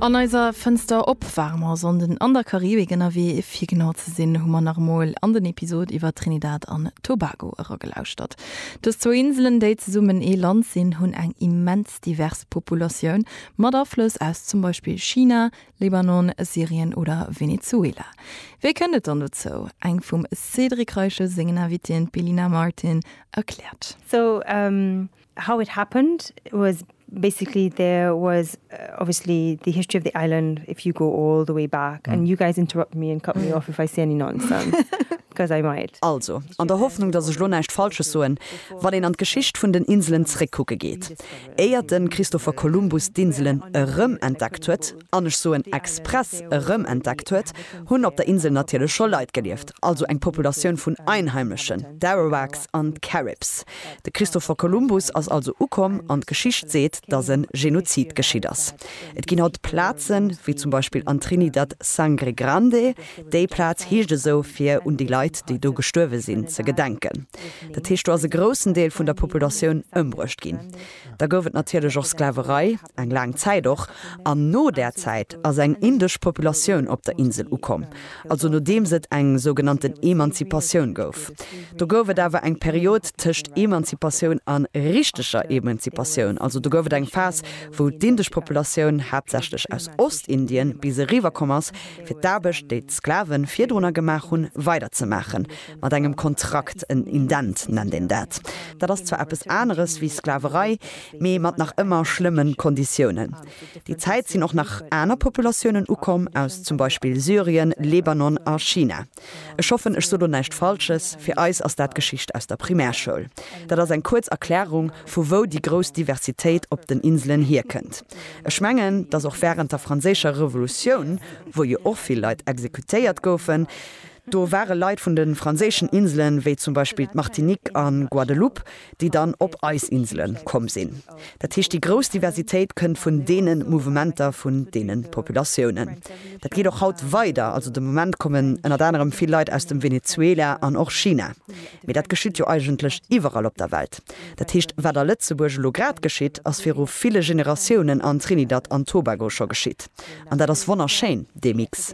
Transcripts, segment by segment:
An eiser Fënster op ware mer Sonnden an der Karibik ënnerwee. Fir genau ze sinn, hu mer nach emol an den Episod iwwer Trinidad an Tobago eragelauschtert. Dës zwou Inselen, déi zesummen ee Land sinn, hunn eng immens divers Populatioun, mat Aflëss aus zum Beispill China, Libanon, Syrien oder Venezuela. Wéi kënnt et dann dozou? Eng vum Cédric Reiche sengen Invitien, d'Belina Martin, erkläert. Sou, How it happened was basically there was obviously the history of the island if you go all the way back and you guys interrupt me and cut me off if I say any nonsense because I might. Also, an der Hoffnung, dass ech lo näischt Falsches soen, wann een an d'Geschicht vun den Inselen zréckkucke geet, éiert de Christopher Columbus d'Inselen erëmentdeckt huet, an ech soen express erëm entdeckt huet, hunn op der Insel natierlech scho Leit gelieft, also eng Populatioun vun Einheimlechen, d'Arawaks an d'Caribs. De Christopher Columbus ass also ukomm an d'Geschicht seet, datt e Genozid geschitt ass. Et ginn haut Plazen, wéi zum Beispill an Trinidad Sangre Grande, déi Plaz heescht esou, fir un déi Leit, déi do gestuerwe sinn, ze gedenken. Dat heescht, do ass e groussen Deel vun der Populatioun ëmbruecht ginn. Da gouf et natierlech och Sklaverei. Eng laang Zäit och. An no där Zäit ass eng indesch Populatioun op der Insel ukomm, also nodeems et eng sougenannten Emanzipatioun gouf. Do gouf et awer eng Period tëscht Emanzipatioun a richteger Emanzipatioun, also do gouf et eng Phas, wou d'indesch Populatioun haaptsächlech aus Ostindien bis eriwwer komm ass, fir d'Aarbecht, déi d'Sklave virdrunner gemaach hunn, weiderzemaachen, mat engem Kontrakt, en Indent nennt een dat. Dat ass zwar eppes aneres wéi Sklaverei. mee mat nach ëmmer schlëmmen Konditiounen. Déi Zäit sinn och nach aner Populatiounen ukomm aus zum Beispill Syrien, Lebanon a China. Ech hoffen ech so lo näischt Falsches, fir eis ass dat Geschicht aus der Primärschoul. Dat ass eng kuerz Erklärung vu wou déi grouss Diversitéit op den Inselen hierkënnt. Ech mengen dass och während der franséischer Revolutioun, wou jo och vill Leit exekutéiert goufen, do ware Leit vun den franséischen Inselen, wéi zum Beispill d'Martinique an Guadeloupe, déi dann op eis Insele komm sinn. Dat heescht, déi grouss Diversitéit kënnt vun deene Mouvementer, vun deene Populatiounen. Dat geet och haut weider. Also de Moment kommen ënnert anerem vill Leit aus dem Venezuela an och China. Mee dat geschitt jo eigentlech iwwerall op der Welt. Dat heescht, wat a Lëtzebuerg elo grad geschitt, ass viru ville Generatiounen an Trinidad an Tobago scho geschitt. An dat ass wonnerschéin, dee Mix.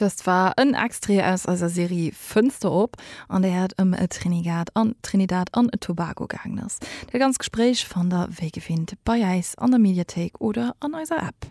Dëst war en Extrait aus eiser Serie Fënster op, an där et ëm Trinigad an Trinidad an Tobago gaangen ass. Dat ganz Gespréich fannt der wéi gewinnt bei äis an der Mediathéik oder an eiser App.